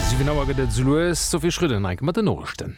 Siwen Auer gëtt et esouloues. D'Sophie Schröder enk mat den Noriichten.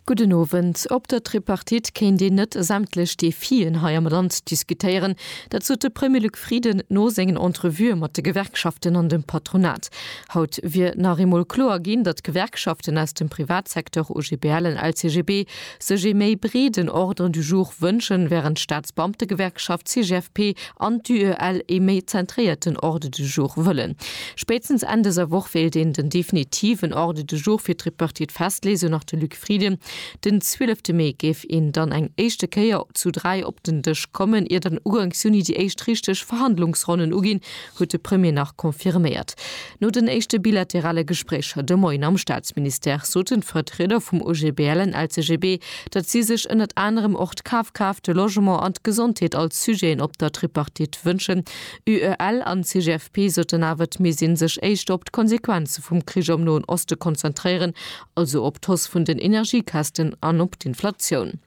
Gudden Owend. Op der Tripartite kéint een net sämtlech Defien hei am Land diskutéieren. Dat sot de Premier Luc Frieden no sengen Entrevuë mat de Gewerkschaften an dem Patronat. Haut wier nach eemol kloer ginn, datt d'Gewerkschaften aus dem Privatsecteur, OGBL an LCGB, sech ee méi breeden Ordre du jour wënschen, während d'Staatsbeamtegewerkschaft CGFP an d'UEL ee méi zentréierten Ordre du jour wëllen. Spéitstens Enn dëser Woch wéilt een den definitiven Ordre du jour fir d'Tripartite festleeë, sou nach de Luc Frieden. Den 12 te Mee géif een dann eng éischte Kéier zu dräi op den Dësch kommen, ier dann Ugangs Juni déi éischt richteg Verhandlungsronnen uginn, huet de Premier nach confirméiert. No den éischte bilaterale Gespréicher de Moien am Staatsministère soten d'Vertrieder vum OGBL an LCGB, datt si sech ënnert anerem och d'Kafkraaft, de Logement an d'Gesondheet als Sujeten op der Tripartite wënschen. UEL an CGFP soten awer, et misst ee sech éischter op d'Konsequenze vum Krich am Noen Oste konzentréieren, also op d'Hausse vun den Energiekästen an op d'Inflatioun.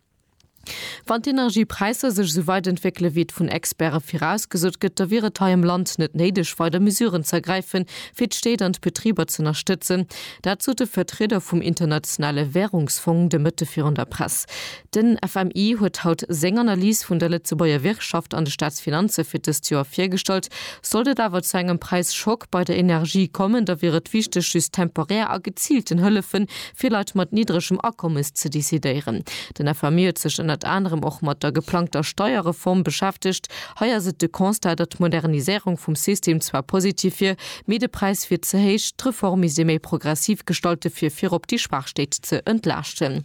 Wann d'Energiepräisser sech esou weit entwéckele wéi et vun Experte virausgesot gëtt, da wier et hei am Land net néideg weider Mesuren ze ergräife fir d'Stéit an d'Betriber z'ënnerstëtzen. Dat sot de Vertrieder vum Internationale Wärungsfong de Mëtte virun der Press. Den FMI huet haut seng Analys vun der Lëtzebuerger Wirtschaft an de Staatsfinanze fir dëst Joer virgestallt. Sollt et awer zu engem Präisschock bei der Energie kommen, da wier et wichteg just temporär a geziilten Hëllefe fir Leit mat niddregem Akommes ze decidéieren. Den FMI huet sech ënnert anerem och mat der geplangter Steierreform beschäftegt. Hei ass et de Constat, datt d'Modernisierung vum System zwar positiv wier, mee de Präis wier ze héich. D'Reform misst ee méi progressiv gestalte fir virop déi Schwaach Stéit ze entlaaschten.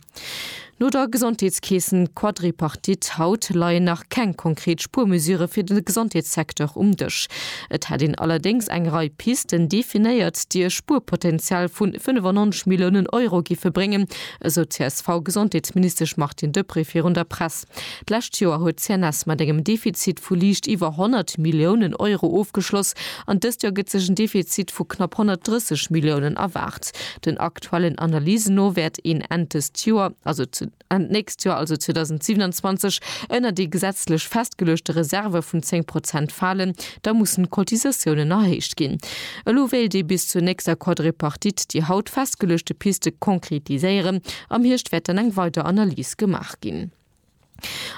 No der Gesondheetskeessen-Quadripartite haut leien nach keng konkret Spuermesure fir de Gesondheetssecteur um Dësch. Et hätt een allerdéngs eng Rei Pisten definéiert, déi e Spuerpotenzial vu 95 Milliounen Euro géife bréngen, esou d'CSV-Gesondheetsministesch Martine Deprez virun der Press. D'lescht Joer huet d'CNS mat engem Defizit vu liicht iwwer 100 Milliounen Euro ofgeschloss an dëst Joer gëtt sech en Defizit vu knapp 130 Milliounen erwaart. Den aktuellen Analysen no wäert een Enn dëst Joer, also zu Enn d'nächst Joer, also 2027, ënner déi gesetzlech festgeluechte Reserve vun 10 Prozent falen. Da mussen d'Cotisatiounen erhéicht ginn. Elo wéilt ee bis zur nächster Quadripartite déi haut festgeluechte Piste konkretiséieren. Am Hierscht wäert dann eng weider Analys gemaach ginn.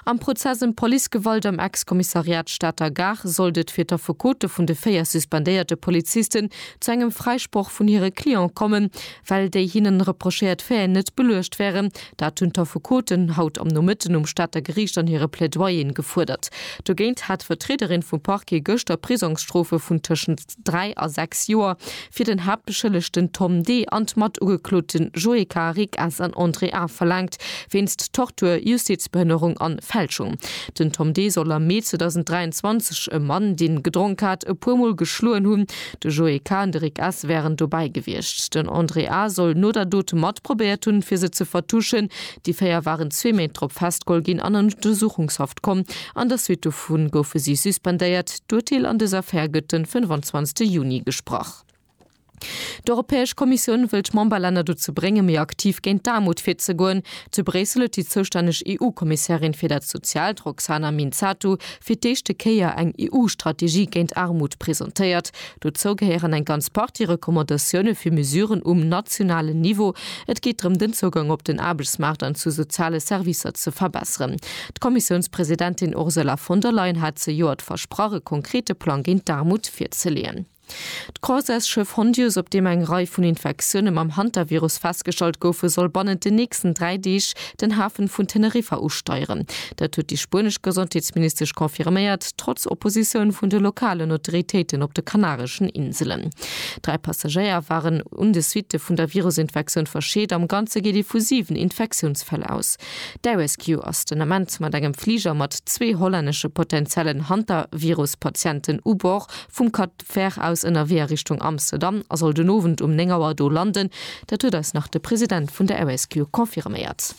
Am Prozess ëm d'Policegewalt am Ex-Kommissariat Stater Gare sollt et fir d'Affekote vun de véier suspendéierte Polizisten zu engem Fräisproch vun hire Cliente kommen, well déi hinnen reprochéiert Faiten net beluecht wären. Dat hunn d'Affekoten haut am Nomëtten um Stater Geriicht an hire Plaidoyeren gefuerdert. Dogéint hat d'Vertriederin vum Parquet gëschter Prisongsstrofe vun tëschent. 3 a 6 Joer, fir den Haaptbeschëllegten Tom D. an d'Matugekloten Joé Carrick S. an André A. verlaangt, wéinst Tortur, Justizbehënnerung an Fälschung. Den Tom D. soll am Mee 2023 e Mann, deen gedronk hat, e puer Mol geschloen hunn. De Joé K. an de Rick S. wären dobäi gewiescht. Den André A. soll no der Dot matprobéiert hunn, fir se ze vertuschen, Déi véier waren zwee Méint drop festgeholl ginn an an Untersuchungshaft komm. An der Suite dovu goufe si suspendéiert. D'Urteel an dëser Affär gëtt de 25 Juni gesprach. D'Europäesch Kommissioun wëll d'Memberlänner dozou bréngen, méi aktiv géint d'Aarmut virzegoen. Zu Bréissel huet déi zoustänneg EU-Kommissärin fir dat Soziaalt, Roxana Minzatu, fir d'éischte Kéier eng EU-Strategie géint Aarmut presentéiert. Dozou gehéieren eng ganz Partie Recommandatioune fir Mesuren um nationalen Niveau. Et geet drëm, den Zougang op den Aarbechtsmaart an zu soziale Servicer ze verbesseren. D'Kommissiounspresidentin Ursula von der Leyen hat zejoert versprach, e konkrete Plang géint d'Aarmut virzeleeën. D'Croiseursschëff Hondius, op deem eng Rei vun Infektioune mam Hantavirus festgestallt goufen, soll bannent den nächsten dräi Deeg den Hafen vun Teneriffa usteieren. Dat huet déi spuenesch Gesondheetsministesch confirméiert, trotz Oppositioun vun de lokalen Autoritéiten op de kanareschen Inselen. Dräi Passagéier waren un de Suitte vun der Virusinfektioun verscheet. Am Ganze geet ee vu 7 Infektiounsfäll aus. D'Air-Rescue ass den Ament mat engem Fliger mat zwee hollännesche potenziellen Hantavirus-Patienten u Bord vum Cat. d'Fähr aus ënnerwee a Richtung Amsterdam a soll den Owend um 9 Auer do landen. Dat huet eis nach de President vun der RSQ confirméiert.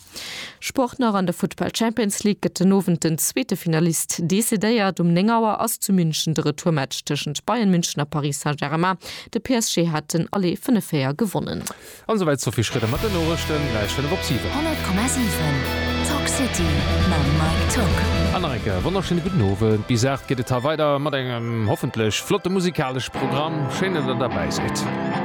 Sport nach, An der Futtball Champions League gëtt den Owend den zweete Finalist decidéiert. Um 9 Auer ass zu München de Retourmatch tëschent Bayern München a Paris Saint-Germain. De PSG hat den Aller vun e 4 gewonnen. An esou wäit d'Sophie Schröder mat den Noriichten. Gläich 5 op 7. 100,7 Talk City mam Mike Tock. An nach eng Kéier e wonnerschéine gudden Owend. Bis 8 geet et hei weider mat engem hoffentlech flotte musikalesch Programm. Schéin, datt der derbäi sidd.